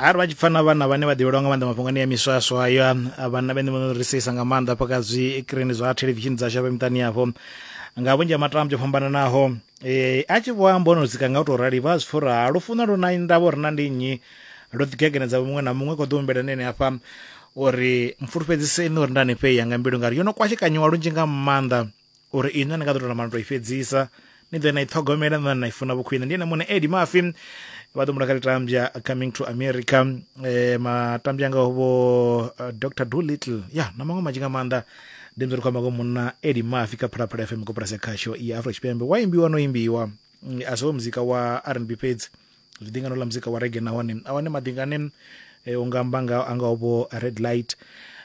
ari vha tshi pfa na vhana vhane vha ḓivhelwa nga maanḓa mafhungoni ya miswaswa ayo vhanna vhene vhono ri seisa nga maanḓa hafha kha zwikrini zwa thelevishini dzashu hafha miṱani yafho nga vhunzhi ha matambo o fhambananaho um a tshi vho amba ono dzika nga u tou rali vha zwi pfa uri ha lufuno lu na ndavha uri na ndi nnyi lu ḓigegenedza muṅwe na muṅwe kho ḓo humbela nene hafha uri mfulufhedziseni uri nda ni fheya nga mbilu ngari yo no kwashekanyiwa lunzhi nga maanḓa uri inwi a ni nga ḓo tou namba ni tou i fhedzisa ni ḓo na i ṱhogomela na na i funa vhukhwine ndi ene muṋe edi mafi vha ḓo mula kha litambya coming to america eh, matambya anga vho uh, dr dolittle ya na maṅwe manzhi nga maanḓa ndi mzori khou amba ngo munna edi mafi kha phalaphala fm koporasi ya khasho ya afro tshipembe wa imbiwa no imbiwa Mm, a si wo muzika wa rnb fhedzi zwi ḓi ngano ḽa muzika wa rege nahone a wane maḓingane um eh, u nga amba nga a ngaho vho red light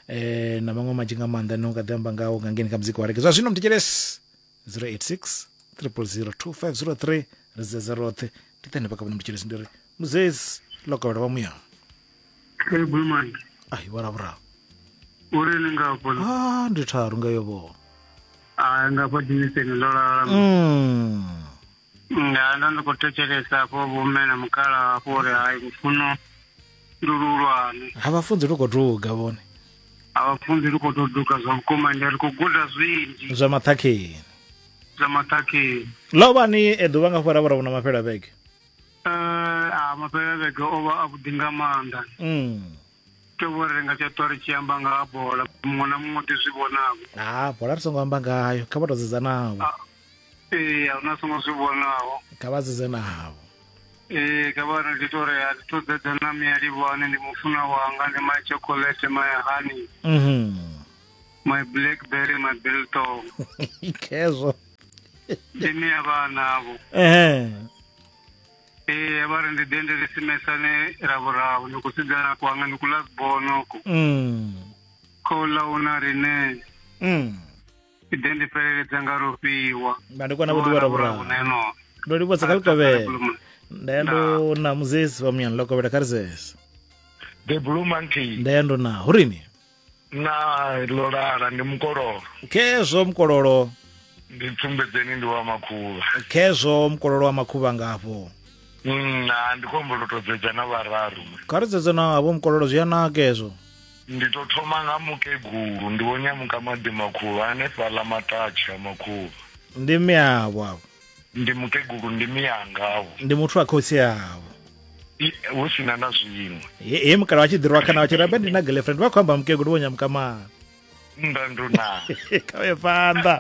um na maṅwe manzhi nga maanḓa ne u nga ḓi amba ngao nga ngeni kha muzika wa rege zwa zwino mthetshelesi 086 300 2503 ri dzedza roṱhe ndi ṱane vhakavhona mthetshelesi ndi ri muzezi ḽo kovhela vha muya bulumandi ai vharavhuraho uri ni nga fhola ah ndi tharu nga yo vho a nga fha dimiseni ndo lala mm. nda ndo ndi khou thetshelesa hafho vhomme na mukala hafho uri hai lufuno ndi luhulwane ha vha funzi lu khou duga vhone a vha funzi lu khou tou duga zwa vhukuma ndi ri khou guda zwinzhi zwa maṱhakheni zwa maṱhakheni ḽo vha ni e ḓuvha nga fhara vhora vhona mafhela vhege Eh, a mafhelo vhege o vha a vhuḓi nga maanḓa Mm. to vho ri nga tsha ṱwa ri tshi amba nga ha bola muṅwe na muṅwe ḓi zwi vhonavho ha bola ri songo amba ngayo kha vha tou dzudzanavho ee a huna songo zwi vhonaho kha vha sedze na havho ee kha vha ndi to ri a thi to dzedza na mia livhane ndi mufuna wanga ndi my chocolate my honey mhm my blackberry my biltong khezwo ndi mia vhanavho ehe ee vha ri ndi ḓe ndi ri simesane ravhuravu ni khou sedzana kwanga ni kula sibonoko mm khou ḽa una rine mm i ḓe ndi fheleledza nga lufhiwa na ndi kona vhuḓivha rabura ndo livhuwa sa kha likovhela nda ya ndo na muzesi wa muyani lokovhela kha rizese the blue monkey nda ya ndo na hurini na lolala ndi mukololo khezwo mukololo ndi pfumbedzeni ndi wa makhuvha khezwo mukololo wa makhuvha ngafho mm, na ndi khombo lotodzedza na vhararu kha rizedza na havho mukololo zwi ya naka ezwo Ndi ḓo thoma nga mukegulu. Ndi Vho Nyamukamadi Makhuvha hanefhaḽa Matatshi ha Makhuvha. Ndi mme avho avho. Ndi mukegulu ndi miyanga avho. Ndi muthu wa khotsi avho. Hu si na na zwiṅwe. He, he mukala wa tshi ḓirwa kana wa tshi rabe ndi na girlfriend vha khou amba mukegulu Vho Nyamukamadi. Nnḓa nduna. Kha vhe phanḓa.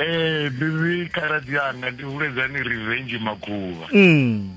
Eh, bibi khaladzi anga ndi huledzani revenge Makhuvha. Mm.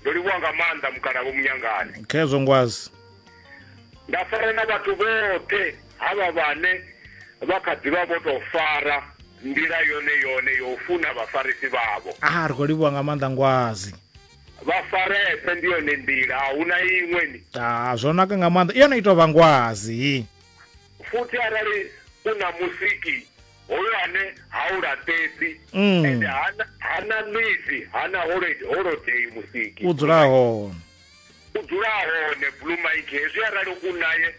ndo livhuwa nga maanḓa mukalavho munyangane khezwo ngwazi nda fara na vhathu vhoṱhe havha vhane vha kha ḓivha vho tou fara nḓila yone yone yo u funa vhafarisi vhavho a ah, ri khou livhuwa nga maanḓa ngwazi vha farese ndi yone nḓila a huna iṅwe ni a ah, zwo naka nga maanḓa i yone i tou vha ngwazi futhi arali u na musiki hoyo ane ha u laṱedzi mm. ende hana ṋwisi hana holodei musiki u dzula hone u dzula hone blue mike hezwi arali u naye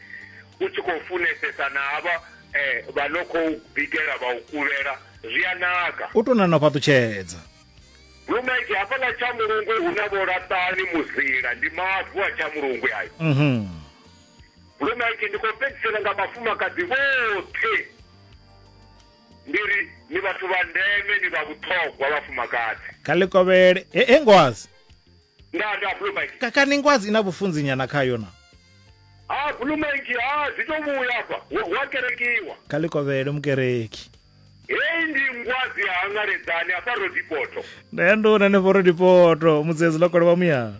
u tshi khou funesesa na havha eh, vha no khou bikela vha u kuvhela zwi a naka u tou nana fhaṱutshedza blue mike hafhaḽa tsha mulungwe hu na vholaṱani muzila ndi mavu a tsha mulungwe ayo mhm. Lwe maipfi ndi khou fhedzisela nga vhafumakadzi vhoṱhe ndi ri ni vhathu vha ndeme ni vha vhuṱhogwa vhafumakadzi kha ḽi kovhele he he ngwazi nda nda blue mike kakani ngwazi i na vhufunzi nyana khayo na ha blue mike ha dzi to vhuya afha wa, wa kerekiwa kha ḽi kovhele mukereki heyi ndi ngwazi ya hangaledzani afha rodipoto nda ya nduna ne vhoro dipoto mudzedzi lokolo wa muyana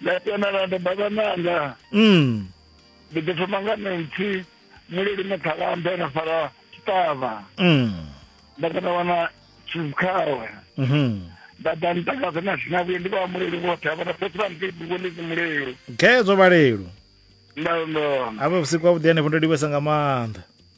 nda tenana nda baba nanga mm. ndi ḓi thoma nga nentsi mulili mathalambe na fara tshiṱavha mm. nda kona wana tshizikhawe mhm. nda ḓa ntakadza na zwina vhuye ndi vha muleli vhoṱhe avha na fhethu vha ndi ḓivho ndi mulelo gedzo vhalelo nda ndo avha vhusiku ha vhuḓi hanefho ndo livhesa nga maanḓa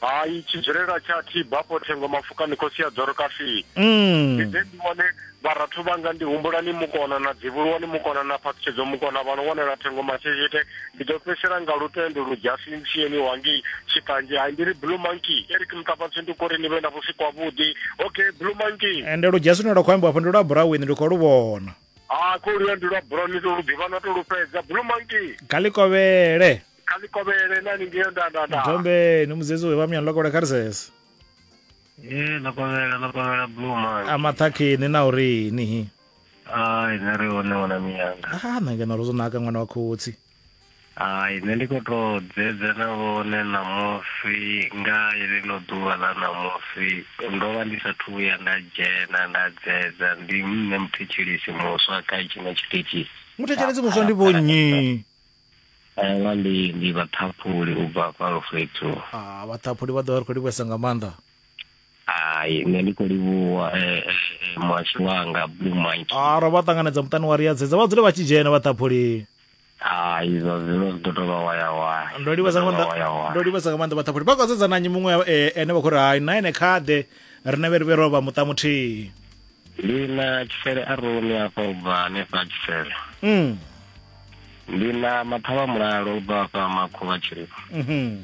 Hai tshidzulela tsha thi bapo thengo mafukani khosi ya dzoro kafii mm. ndi ḓe ndi vhone vharathu vhanga ndi humbulani mukona na dzivhuluwani mukona na phaṱhutshedzo mukona vha no wanela thengo masheshete ndi ḓo fhesela nga lutendo lu dzhasi ntsieni wangi tshiṱanzhe hai ndi ri blue monkey eric mutapatsi ndi kori ni vhe na vhusiku havhuḓi okay blue monkey ende lu dzhasi lune lwa khou ambiwa afho ndi lwa burawini ndi khou lu vhona a ah, khou luya ndi lwa burawini to lu ḓivha na to lu fhedza blue monkey kha ḽikovhele kha ḽi kovhele na lingeo ndandanda dombe ni mudzedzi we vha muyani ḽa kovhela kha ri sese ee ḽa kovhela ḽa kovhela blue man a maṱhakheni na uri nihi ai nṋe ri hone wana miyanga a ah, na ngeno ro zwo naka ṅwana wa khotsi ai nṋe ndi khou tou dzedza na vhone ṋamusi nga ḽino ḓuvha ḽa ṋamusi ndo vha ndi sa thu vhuya nda dzhena nda dzedza ndi nṋe muthetshelesi muswa kha tshine tshiṱitshi muthetshelesi muswa ndi vhonnyi Nga ndi ndi vhaṱhaphuli u bva kwa lufhethu. Ah vhaṱhaphuli vha ḓo vha ri khou livhuesa nga maanḓa. Hai nṋe ndi khou livhuwa eh, eh, eh, muhasho wanga Blue Monkey. Ah ro vha ṱanganedza muṱani wa ri ya dzedza vha dzule vha tshi dzhena vhaṱhaphuli. Hai zwa zwino zwi ḓo tou vha waya waya. Ndo livhuesa nga Zwi ḓo tou vha waya maanḓa waya. ndo livhuesa nga maanḓa vhaṱhaphuli vha khou dzedza na nnyi muṅwe eh, ene vha khou ri hai na ene khaḓe rine vhe ri vhe ro vha muṱa muthihi. Ndi na tshifele a rumi afha u bva hanefha a tshifele. Mm. Ndi na mathavha mulalo u bva afha makhuvha tshirifha. Mhm.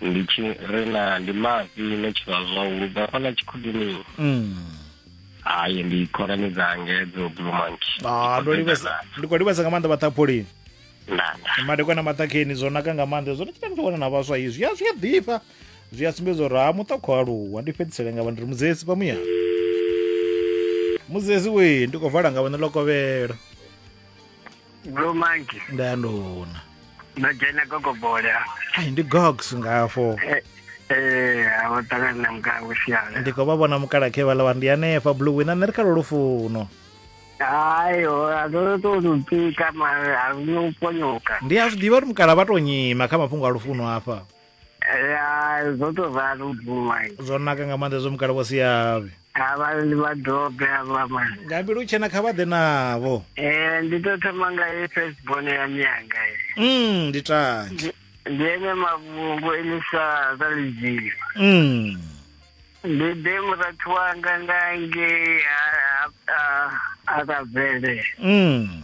Ndi tshi ri na ndi mafhi ne tshivha zwa u bva afha na tshikhudini. Mm. Hayi ndi khonani dza ngedzo Blue Monkey. Ah, ndo livhesa ndi khou livhesa nga maanḓa vhaṱhapholeni Ndanda. madekwana maṱhakheni zwo naka nga maanḓa zwo ri tshita ndi tshi wana na vhaswa izwi ya zwi a ḓifha zwi a sumbedza uri ha muṱa khou aluwa ndi fhedzisele nga vha ndi ri mudzesi pamuya mudzesi we ndi khou vala nga vhone ḽo kovhela bro manki nda ya ndona ndo dzhena gogobola ai ndi gogs ngafo eh, eh, wo ṱangana na mukala kusiala ndi khou vha vhona mukala khe vhala vha ndi hanefha blue wina nṋe ri kha lwo lufuno hayo azolo to lupika mara aluno ponyoka ndi a zwi ḓivha uri mukala vha to nyima kha mafhungo a lufuno hafha ya zwo to ralo bvuma zwo naka nga maanḓa zwo mukala vho siavhe avha ndi vha dobe avha mani nga mbilu tshena kha vha ḓe navho eh ndi to thoma nga ye first born ya mianga mm ndi tangi ndi ene mavhungu elisa za lidzilo mm ndi ḓe murathu wanga ngange a a a ka bvele mm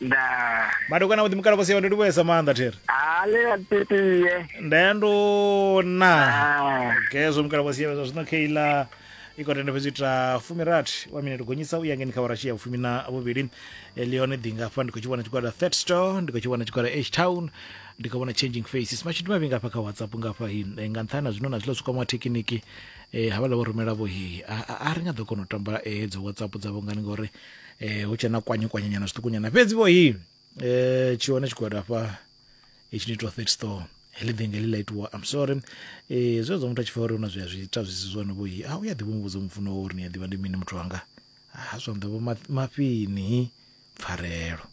ndaa madekwana vhuḓi mukala vhasiwa ndi livhuesa maanḓa thiri haa le ya titiye ndaya ndo na Ah. gezwo mukala vhasiwa zwa zwino keila i khou tenda fhedzi u ita fumirathi wa minete gonyisa u ya ngeni kha vharashi ya vhufumi na vhuvhili Eh, ndi hone ḓi ngafha ndi khou tshi vhona tshigwada third store ndi khou tshi vhona tshigwada h town ndi khou vhona changing faces mashudu mavhi ngafha kha whatsapp ngafha hi Eh, nga nṱhani na zwino na zwiḽa zwikwama wa thekiniki eh, havhala vho rumela vho hi a- a a ri nga ḓo kona u tamba eh, hedzo whatsapp dzavho ngani ngori eh hu tshena kwanye kwanye nyana zwiṱuku nyana fhedzi vho hi eh tshi hone tshigwada hafha itshi ni to third store heḽi vhengele ḽa itiwa i'm sorry eh zwe zwo muthu a tshi fa uri una zwi a zwi ita zwi si zwone vho hi a u ya ḓivha muvhudza mufuno wa uri ni a ḓivha ndi mini muthu wanga ha zwanḓa vho mafhini pfarelo